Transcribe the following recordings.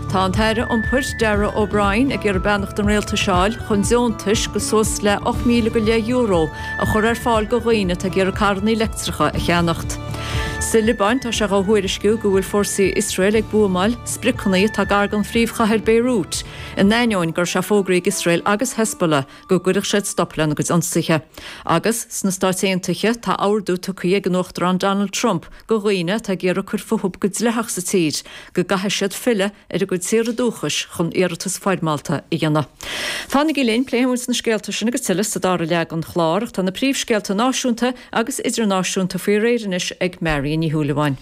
Tá an tAire Iompair, Darragh O'Brien, ag iarraidh beannacht an Rialtais a fháil chun deontais go suas le €8,000 go leith euro a chur ar fáil go dhaoine atá ag iarraidh carrannaí leictreacha a cheannacht. Sa Liobáin, tá sé á thuairisciú go bhfuil fórsaí Iosrael ag buamáil spriocanna atá gar don phríomhchathair Beirut, in ainneoin go raibh sé fógraithe ag Iosrael agus Hezbollah, go gcuirfeadh siad stop lena gcuid ionsaithe. Agus, sna Stáit Aontaithe, tá ordú tugtha ag an Uachtarán Donald Trump go dhaoine atá ag iarraidh cur fúthub go dleathach sa tír go gcaithfidh siad filleadh ar a gcuid tíortha dúchais chun iarratas foirmeálta a dhéanamh. Fanaigí linn, pléifidh muid na scéalta sin agus tuilleadh sa dara leath den chlár ach tá na príomhscéalta náisiúnta agus idirnáisiúnta faoi réir anois ag Marion Ní Shúilleabháin.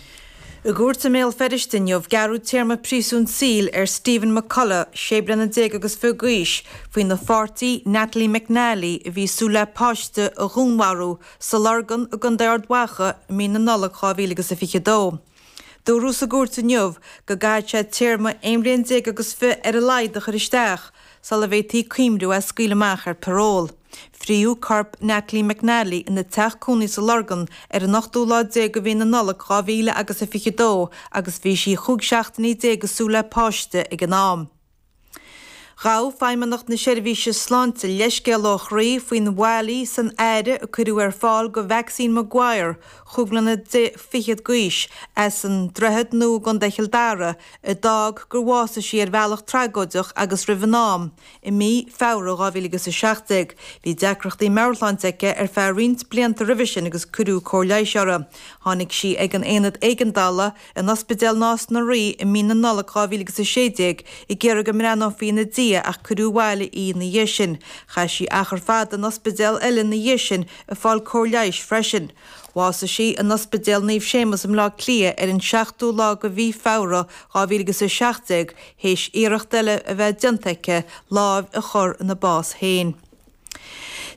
I gcúirt i mBéal Feirste inniu, gearradh téarma príosúin saoil ar Stephen McCullagh, sé bliana déag agus fiche d'aois, faoina pháirtí, Natalie McNally, a bhí ag súil le páiste, a dhúnmharú sa Lorgain i gContae Ard Mhacha i mí na Nollag 2022. Dúradh sa gcúirt inniu go gcaithfidh sé téarma aon bhliain déag agus fiche ar a laghad a chur isteach, sula bhféadfaí cuimhniú é a scaoileadh amach ar parole. Fritheadh corp Natalie McNally ina teach cónaí sa Lorgain ar an ochtú lá déag de mhí na Nollag dhá mhíle agus a fiche dó agus bhí sí chúig seachtainí déag ag súil le páiste ag an am. Ghabh Feidhmeannacht na Seirbhíse Sláinte leithscéal ó chroí faoin bhfaillí san aire a cuireadh ar fáil go Maxine Maguire, chúig bliana fichead d'aois, as an Droichead Nua i gContae Chill Dara, a d'fhág gur bhásaigh sí ar bhealach tragóideach agus roimh an am, i mí Feabhra 2017. Bhí deacrachtaí meabhairshláinte aici ar feadh roinnt blianta roimhe sin agus cuireadh cóir leighis uirthi. Tháinig sí ag an Aonad Éigeandála in Ospidéal Nás na Rí i mí na Nollag 2016 ag iarraidh go mbreathnófaí ina diaidh ach cuireadh abhaile í ina dhiaidh sin. Chaith sí achar fada in ospidéal eile ina dhiaidh sin ag fáil cóir leighis freisin. Bhásaigh sí in Ospidéal Naomh Séamas i mBleá Cliath ar an seachtú lá de mhí Feabhra 2017 théis iarracht eile a bheith déanta aici láimh a chur ina bás féin.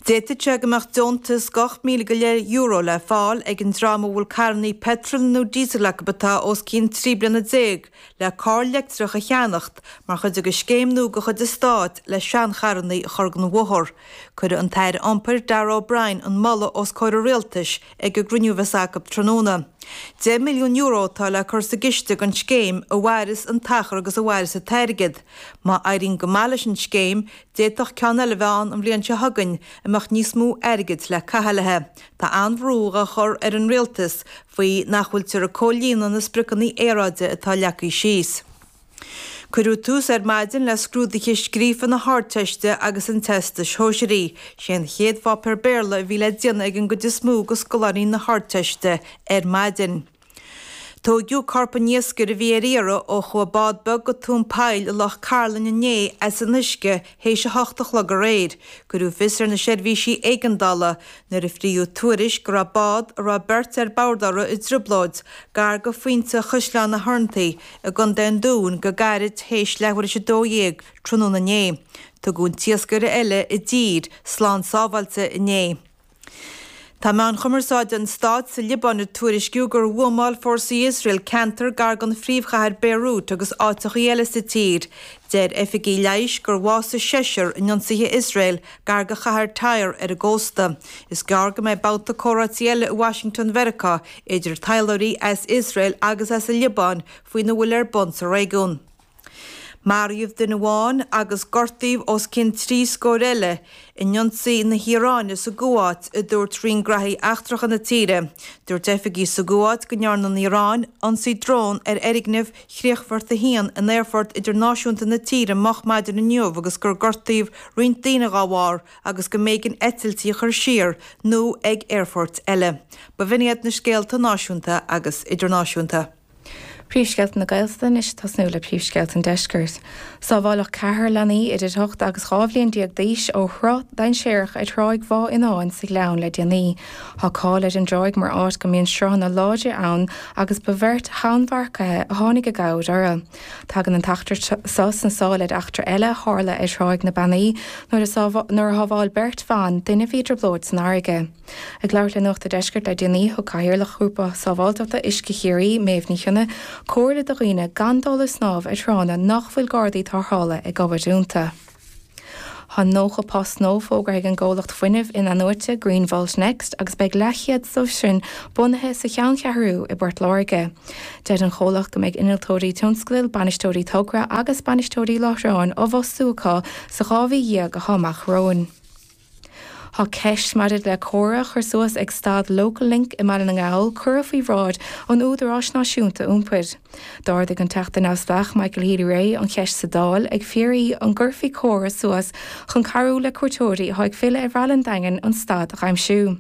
D'fhéadfadh sé go mbeadh deontas de ocht míle go leith euro le fáil ag an dream a bhfuil carrannaí peitril nó díosail acu atá os cionn trí bliana déag le carr leictreach a cheannacht mar chuid de scéim nua de chuid an stáit le seancharrannaí a chur den bhóthar. Cuirfidh an tAire Iompair, Darragh O'Brien, an moladh os comhair an Rialtais ag an gcruinniú a bheas acu tráthnóna. €10 milliún atá le cur sa gciste don scéim, a mhairfeas an t-achar agus a mhairfeas an t-airgead. Má éiríonn go maith leis an scéim, d'fhéadfadh ceann eile a bheith ann an bhliain seo chugainn, a mbeadh níos mó airgid le caitheamh léithe. Tá an-bhrú á chur ar an Rialtas faoi nach bhfuiltear ag comhlíonadh na spriocanna aeráide atá leagtha síos. Cuireadh tús ar maidin le scrúduithe scríofa na hArdteiste agus an Teastais Shóisearaigh. Sé an chéad pháipéar Béarla a bhí le déanamh ag an gcuid is mó de scoláirí na hArdteiste ar maidin. Tóigeadh corp an iascaire a bhí ar iarraidh ó chuaigh bád beag go tóin poill i Loch Cairlinn inné as an uisce théis a hocht a chlog aréir. Cuireadh fios ar na seirbhísí éigeandála nuair a frítheadh tuairisc go raibh bád a raibh beirt ar bord uirthi i dtrioblóid gar go Phointe Chaisleán na hOireanaí I gContae an Dúin, go gairid théis leathuair théis a dó dhéag tráthnóna inné, tugadh an t-iascaire eile i dtír, slán sábháilte, inné. Tá meáin chumarsáide an stáit sa Liobáin ag tuairisciú gur bhuamáil fórsaí Iosrael ceantar gar don phríomhchathair Beirut agus áiteachaí eile sa tír. Deir oifigigh leighis gur bhásaigh seisear in ionsaithe Iosrael gar go chathair Tyre ar an gcósta. Is gearr go mbeidh babhta comhráití eile i Washington Mheiriceá idir taidhleoirí as Iosrael agus as an Liobáin faoina bhfuil ar bun sa réigiún. Maraíodh duine amháin agus gortaíodh os cionn trí scór eile in ionsaí na hIaráine sa gCuáit, a dúirt roinn graithí eachtracha na tíre. Dúirt oifigigh sa gCuáit go ndearna an Iaráin ionsaí drón ar fhoirgneamh Chríochfort 1 in aerfort idirnáisiúnta na tíre moch maidin inniu agus gur gortaíodh roinnt daoine dá bharr, agus go mb'éigean eitiltí a chur siar nó ag aerfoirt eile. B'in iad na scéalta náisiúnta agus idirnáisiúnta. Príomhscéalta na Gaeltachta anois ag tosnú le príomhscéalta an Deiscirt. Sábháladh ceathrar leanaí idir ocht agus dhá bhliain déag d'aois ó shruth dainséarach ar Thráigh Bhá Fhionnáin sa Ghleann le déanaí. Tá cáil ar an dtráigh mar áit go mbíonn sruthanna láidre ann agus ba bheirt thonnmharcaithe a tháinig i gcabhair orthu. Tagann an t-eachtra seo sna sála ar eachtra eile a tharla ar Thráigh na Beannaí nuair a shábháil beirt bhan duine a bhí i dtrioblóid san fharraige. Ag labhairt le Nuacht a' Deiscirt le déanaí, thug Cathaoirleach Ghrúpa Sábháilteachta Uisce Chiarraí, Méabh Ní Chionnaith, comhairle do dhaoine gan dul ag snámh ar thránna nach bhfuil gardaí tárthála ag obair ionta. Tá 90 post nua fógartha ag an gcomhlacht fuinnimh in-athnuaite Greenvolt Next agus beidh leathchéad dóibh sin bunaithe sa Cheanncheathrú i bPort Láirge. Deir an comhlacht go mbeidh innealtóirí tionscadail, bainisteoirí togra agus bainisteoirí láithreáin á bhfostú acu sa dhá mhí dhéag atá amach romhainn. Tá ceist maidir le comhartha a chur suas ag stad Local Link i mBaile na nGall curtha faoi bhráid an Údaráis Náisiúnta Iompair. D'ardaigh an Teachta neamhspleách Michael Healy-Rae an cheist sa Dáil ag fiafraí an gcuirfí comhartha suas chun cabhrú le cuairteoirí atá ag filleadh ar Bhaile an Daingin an stad a aimsiú.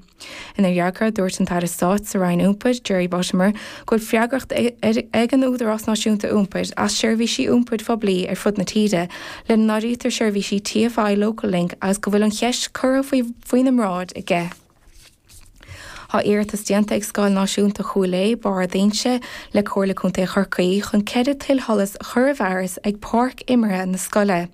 Ina fhreagra, dúirt an tAire Stáit sa Roinn Iompair, Jerry Buttimer, go bhfuil freagracht ag an Údarás Náisiúnta Iompair as seirbhísí iompair phoiblí ar fud na tíre, lena n-áirítear seirbhísí TFI Local Link agus go bhfuil an cheist curtha faoina mbráid aige. Tá iarratas déanta ag Scoil Náisiúnta Chúil Aodha, Barr d'Inse, le Comhairle Contae Chorcaí chun ceithre tuilsholas a chur i bhfearas ag páirc imeartha na scoile.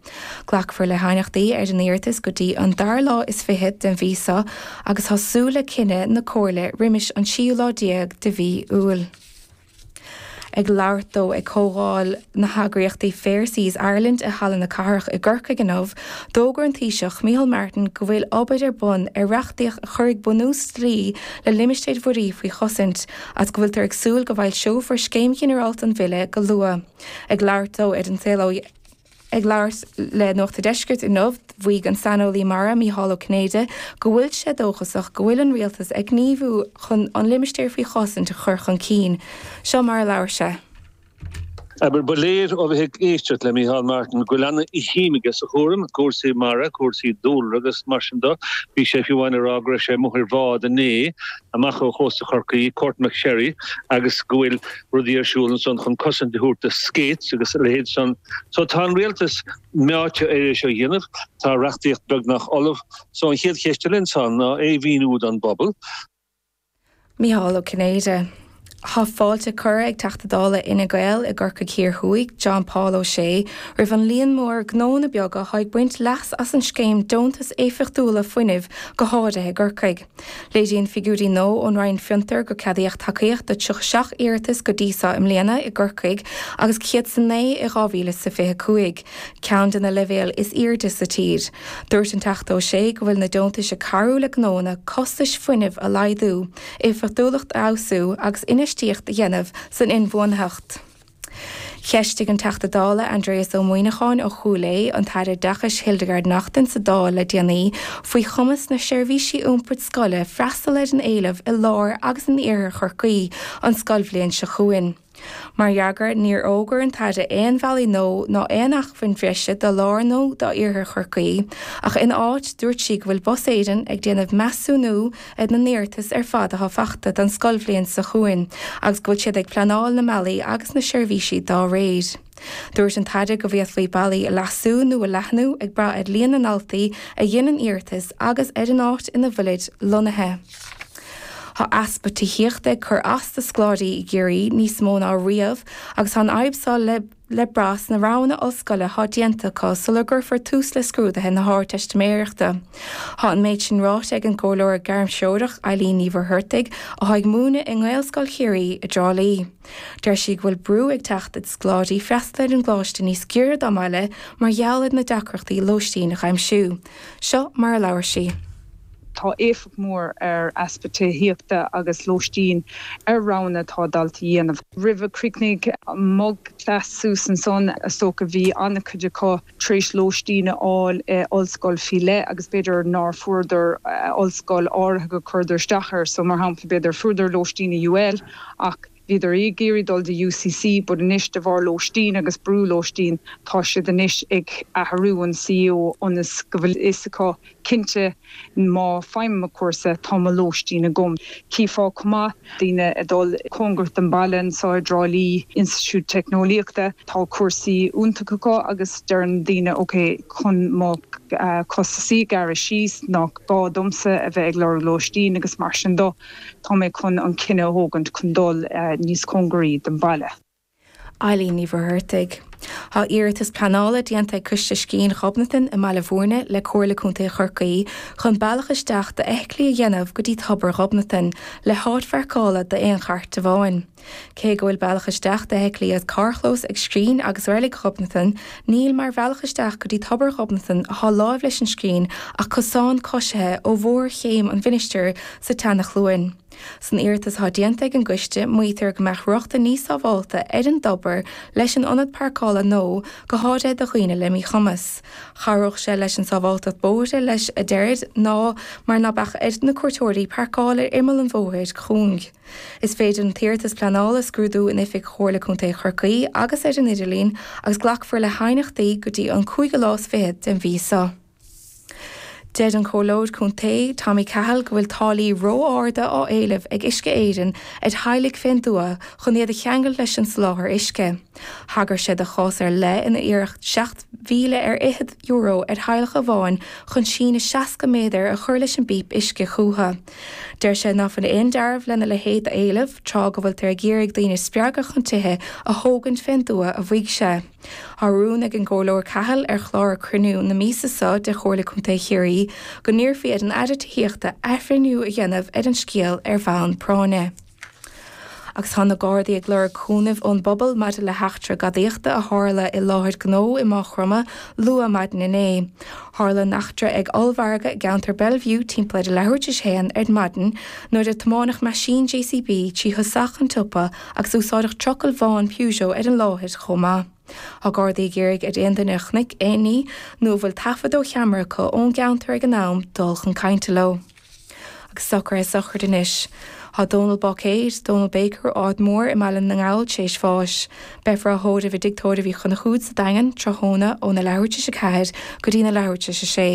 Glacfar le haighneachtaí ar an iarratas go dtí an dara lá is fiche den mhí seo agus tá súil le cinneadh na Comhairle roimis an tríú lá déag de mhí Iúil. Ag labhairt dó ag comhdháil na heagraíochtaí Fair Seas Ireland i Halla na Cathrach i gCorcaigh inniu, d'fhógair an Taoiseach Micheál Martin go bhfuil obair ar bun ar reachtaíocht a chuirfidh bunús dlí le limistéir mhuirí faoi chosaint agus go bhfuiltear ag súil go bhfoilseofar Scéim Ghinearálta an Bhille go luath. Ag labhairt dó ar An Saol Ó. Ag labhairt le Nuacht a' Deiscirt inniu, mhaígh an saineolaí mara, Micheál Ó Cinnéide, go bhfuil sé dóchasach go bhfuil an Rialtas ag gníomhú chun an Limistéar Faoi Chosaint a chur chun cinn. Seo mar a labhair sé. Abair, Ba léir ó bheith ag éisteacht le Micheál Martin go bhfuil an-shuim aige sa chúram, cúrsaí mara, cúrsaí dúlra agus mar sin de. Bhí sé fiú ann ag rá go raibh sé amuigh ar bhád inné amach ó chósta Chorcaí, Courtmacsherry, agus go bhfuil. rudaí ar siúl ansan chun cosaint a thabhairt do Skates agus a leithéid san. So tá an Rialtas meáite ar é seo a dhéanamh. Tá reachtaíocht beagnach ullamh. So an chéad cheist eile ansan ná é a mhíniú don bpobal. Micheál Ó Cinnéide, Tá fáilte curtha ag Teachta Dála Fhine Gael i gCorcaigh Thiar Thuaidh, John Paul Ó Sé, roimh an líon mór gnóanna beaga atá ag baint leas as an scéim deontas éifeachtúla fuinnimh go háirithe i gCorcaigh. Léiríonn figiúirí nua ón Roinn Fiontar gur ceadaíodh tacaíocht do 37 iarratas go dtí seo i mbliana i gCorcaigh agus 109 i 2025, ceann de na leibhéil is airde sa tír. Dúirt an Teachta Ó Sé go bhfuil na deontais ag cabhrú le gnóanna costais fuinnimh a laghdú, éifeachtúlacht a fheabhsú agus infheistíocht a dhéanamh san inbhuanaitheacht. Cheistigh an Teachta Dála Aindrias Ó Muimhneacháin ó Chúil Aodha an tAire Oideachais Hildegarde Naughton sa Dáil le déanaí faoi chumas na seirbhísí iompair scoile freastal ar an éileamh i lár agus in iarthar Chorcaí an scoilbhliain seo chugainn. Mar fhreagra, níor fhógair an tAire aon bhealaí nua ná aon acmhainn bhreise do lár nó d'iarthar Chorcaí ach ina áit dúirt sí go bhfuil Bus Éireann ag déanamh measúnú ar na n-iarratas ar fad atá fachta don scoilbhliain seo chugainn agus go bhfuil siad ag pleanáil na mbealaí agus na seirbhísí dá réir. Dúirt an tAire go bhféadfaí bealaí a leasú nó a leathnú ag brath ar líon na ndaltaí a dhéanann iarratas agus ar an áit ina bhfuilid lonnaithe. Tá easpa tithíochta ag cur as do scoláirí i gCiarraí níos mó ná riamh agus tá an fhadhb seo le. le brath sna roghanna ollscoile atá déanta acu sula gcuirfear tús le scrúduithe na hArdteistiméireachta. Tá an méid sin ráite ag an gComhairleoir Gairmthreorach, Eilín Ní Mhuircheartaigh, atá ag múineadh i nGaelscoil Chiarraí i dTrá Lí. Deir sí go bhfuil brú ag teacht ar scoláirí freastal ar an gcoláiste níos giorra dá mbaile mar gheall ar na deacrachtaí lóistín a aimsiú. Seo mar a labhair sí. Tá éifeacht mhór ar easpa tithíochta agus lóistín ar roghanna atá dalta a dhéanamh. Roimh a críochnaigh mo class suas ansan is dócha bhí an-chuid acu tar éis lóistín a fháil i ollscoil faoi leith agus b'fhéidir nár fuaireadar ollscoil áirithe go gcuireadar isteach air so mar shampla b'fhéidir fuaireadar lóistín i UL ach Bhíodar ag iarraidh dul go dtí UCC but anois de bharr lóistín agus brú lóistín tá siad anois ag athrú an CAO ionas go bhfuil fhios acu cinnte má faighim mo cúrsa tá mo lóistín agam. Chífeá chomh maith daoine ag dul cóngarach don baile anseo i dTrá Lí, Institiúid Teicneolaíochta, tá cúrsaí iontach acu agus deireann daoine ok chun mo costasaí a ghearradh síos nach gá domsa a bheith ag lorg lóistín agus mar sin de. Tá mé chun an cinneadh a thógaint chun dul níos cóngaraí don bhaile. Eilín Ní Mhuircheartaigh. Tá iarratas pleanála déanta ag Coiste Scrín Ghobnatan i mBaile Mhúirne le Comhairle Contae Chorcaí chun bealach isteach d'fheithiclí a dhéanamh go dtí Tobar Ghobnatan, le háit pharcála d'aon chairt amháin. Cé go bhfuil bealach isteach d'fheithiclí as carrchlós ag Scrín agus Reilig Ghobnatan, níl mar bhealach isteach go dtí Tobar Ghobnatan atá láimh leis an Scrín ach cosán coisithe ó bharr Chéim an Mhinistir sa tSeana-Chluain. San iarratas atá déanta ag an gCoiste maítear go mbeadh rochtain níos sábhálta ar an dTobar leis an ionad parcála nua, go háirithe do dhaoine le míchumas, chabhródh sé leis an sábháltacht bóithre leis a deir ná mar ná beadh ar na cuairteoirí parcáil ar imeall an bhóthair chúing. Is féidir an t-iarratas pleanála a scrúdú in oifig Chomhairle Contae Chorcaí agus ar an idirlíon agus glacfar le haighneachtaí go dtí an cúigiú lá is fiche den mhí seo. Deir an Comhairleoir Contae Tommy Cahill go bhfuil táillí ró-arda á éileamh ag Uisce Éireann ar theaghlaigh fén dtuath chun iad a cheangailt leis an soláthar uisce. Thagair sé do chás ar leith inar iarradh seacht mhíle ar fhichead euro ar theaghlach amháin chun síneadh seasca méadar a chur leis an bpíp uisce chúthu. Deir sé nach bhfuil aon dealramh lena leithéid a éileamh tráth go bhfuiltear ag iarraidh daoine a spreagadh chun tithe a thógaint fén dtuath a mhaígh sé. Tá rún ag an gComhairleoir Cahill ar chlár cruinniú na míosa so de Chomhairle Contae Chiarraí go n-iarrfaí ar an Aire Tithíochta athbhreithniú a dhéanamh ar an scéal ar bhonn práinne. agus tá na Gardaí ag lorg cúnaimh ón bpobal maidir le heachtra gadaíochta a tharla i láthair gnó i Maigh Chromtha luath maidin inné. Tharla an eachtra ag ollmhargadh i gceantar Bellevue timpeall ar a leathuair tar éis a haon ar maidin nuair a tiomáineadh meaisín JCB trí thosach an tsiopa agus úsáideadh trucail bhán Peugeot ar an láthair chomh maith. Tá Gardaí ag iarraidh ar aon duine a chonaic aon ní nó a bhfuil taifead ó cheamara acu ón gceantar ag an am dul chun cainte leo. Agus socruithe sochraide anois. Tá Dónall Bácaeir, Dónall Baker, ó Arda Mór i mBaile na nGall tar éis bháis. Beifear á thórramh i dTigh Tórraimh Uí Chonchúir sa Daingean tráthnóna ó na leathuair tar éis a ceathair go dtí na leathuair tar éis a sé.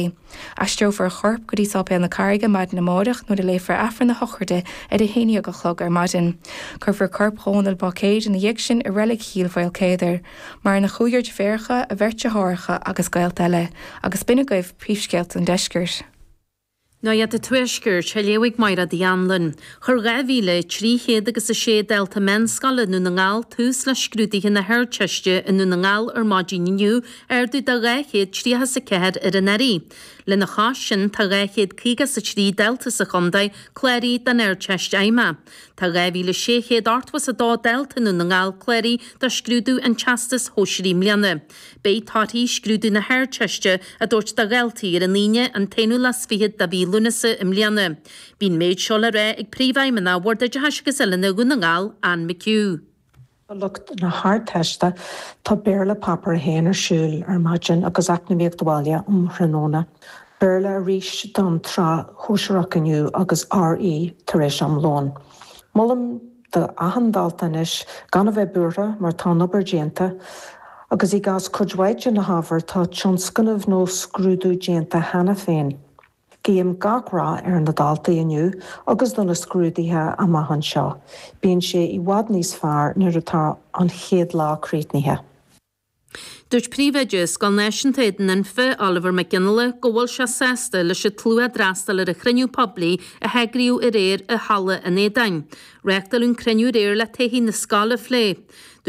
Aistreofar a chorp go dtí Sáipéal na Carraige maidin amáireach nuair a léifear Aifreann a shochraide ar a haon dhéag a chlog ar maidin. Cuirfear corp Dhónaill Bácaeir ina dhiaidh sin i Reilig Chill Maoilchéadair. Maireann a chúigear deirfiúracha, a bheirt deartháireacha agus gaolta eile. Agus b'in agaibh príomhscéalta an Deiscirt. Nuacht an Tuaiscirt á léamh ag Maighread Uí Annluin. Chuir 2,300 agus 6 dalta meánscoile i nDún na nGall tús le scrúduithe na hArdteiste i nDún na nGall ar maidin inniu, ardú de 230 is 4 ar anuraidh. Lena chois sin, tá 250 is 3 dalta sa chontae cláraithe don Ardteist Fheidhmeach. Tá 2,680 is 2 dalta i nDún na nGall cláraithe do scrúdú an Teastais Shóisearaigh i mbliana. Beidh torthaí scrúdú na hArdteiste á dtabhairt do dhaltaí ar an Aoine an t-aonú lá 's fiche de mhí Lúnasa i mbliana. Bhí an méid seo le rá ag Príomhfheidhmeannach Bhord Oideachais agus Oiliúna Dhún na nGall, Anne McHugh. Do lucht na hArdteiste, tá Béarla Páipéar 1 ar siúl ar maidin agus Eacnamaíocht Bhaile um thráthnóna. Béarla arís don tSraith Shóisearach inniu agus RE tar éis am lóin. Molaim do achan dalta anois gan a bheith buartha mar tá an obair déanta agus i gcás cuid mhaith de na hábhair tá tionscnamh nó scrúdú déanta cheana féin. Guím gach rath ar na daltaí inniu agus do na scrúduithe amach anseo. Bíonn sé i bhfad níos fearr nuair atá an chéad lá críochnaithe. Dúirt Príomhoide Scoil Náisiúnta Éadan Anfa, Oliver Mac Fhionnghaile, go bhfuil sé sásta leis an tslua a d'fhreastail ar an chruinniú poiblí a heagraíodh aréir i Halla an Éadáin. Reáchtáladh an cruinniú aréir le todhchaí na scoile a phlé.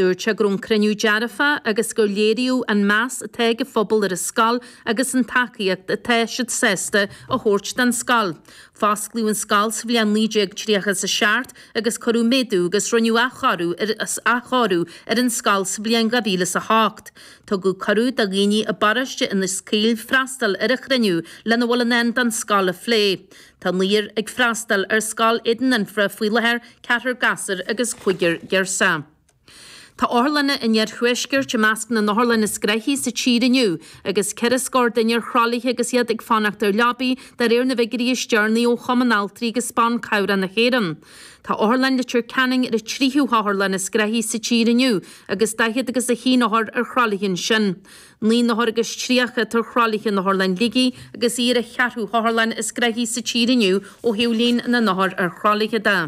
Dúirt sé go raibh an cruinniú dearfach agus gur léiríodh an meas atá ag an phobal ar an scoil agus an tacaíocht atá siad sásta a thabhairt don scoil. Fosclaíodh an scoil sa bhliain 1930 is 7 agus cuireadh méadú agus rinneadh athchóiriú athchóiriú ar an scoil sa bhliain 2008. Tugadh cuireadh do dhaoine i bparóiste Inis Caoil freastal ar an chruinniú lena bhfuil i ndán don scoil a phlé. Tá naonúr ag freastal ar Scoil Éadan Anfa faoi láthair, ceathrar gasúr agus cúigear girseach. Tá otharlanna an Iarthuaiscirt i measc na n-otharlann is gnoithí sa tír inniu, agus ceithre scór duine ar thralaithe agus iad ag fanacht ar leabaí, de réir na bhfiguirí is deireanaí ó Chumann Altraí agus Ban Cabhrach na hÉireann. Tá Otharlann Leitir Ceanainn ar an tríú hotharlann is gnoithí sa tír inniu, agus daichead agus a haon othar ar thralaithe ansin. Naoi n-othar agus tríocha atá ar thralaithe in Otharlann Shligigh, agus í ar an cheathrú hotharlann is gnoithí sa tír inniu ó thaobh líon na n-othar ar thralaithe de.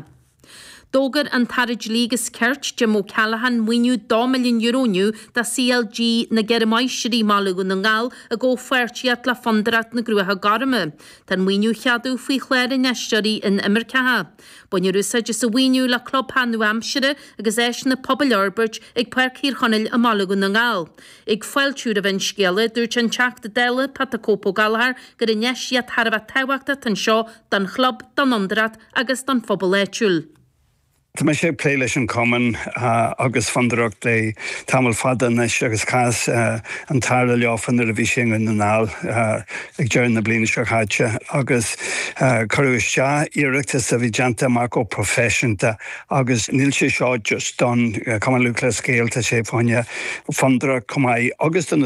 D'fhógair an tAire Dlí agus Cirt, Jim O'Callaghan, maoiniú €2 milliún inniu do CLG na gCeithre Máistrí, Baile Dhún na nGall, i gcomhpháirtíocht le Fondúireacht na gCruach Gorma. Tá an maoiniú á cheadú faoi Chlár Infheisteoirí Inimirceach. Bainfear úsáid as an mhaoiniú le clubtheach nua-aimseartha agus áiseanna pobail a fhorbairt ag Páirc Thír Chonaill i mBaile Dhún na nGall. Ag fáiltiú roimh an scéala, dúirt an Teachta Dála Pat 'The Cope' Ó Gallchóir gur infheistíocht thar a bheith tábhachtach atá anseo don chlub, don Fhondúireacht, agus don phobal áitiúil. Tá mise ag plé leis an Chumann agus Fondúireacht le tamall fada anois agus chas an tAire leofa nuair a bhí sé i nDún na nGall ag deireadh na bliana seo caite agus cuireadh isteach iarratas a bhí déanta amach go proifisiúnta agus níl sé seo just don Chumann Lúthchleas Gael, tá sé fá choinne Fondúireacht chomh maith agus do na.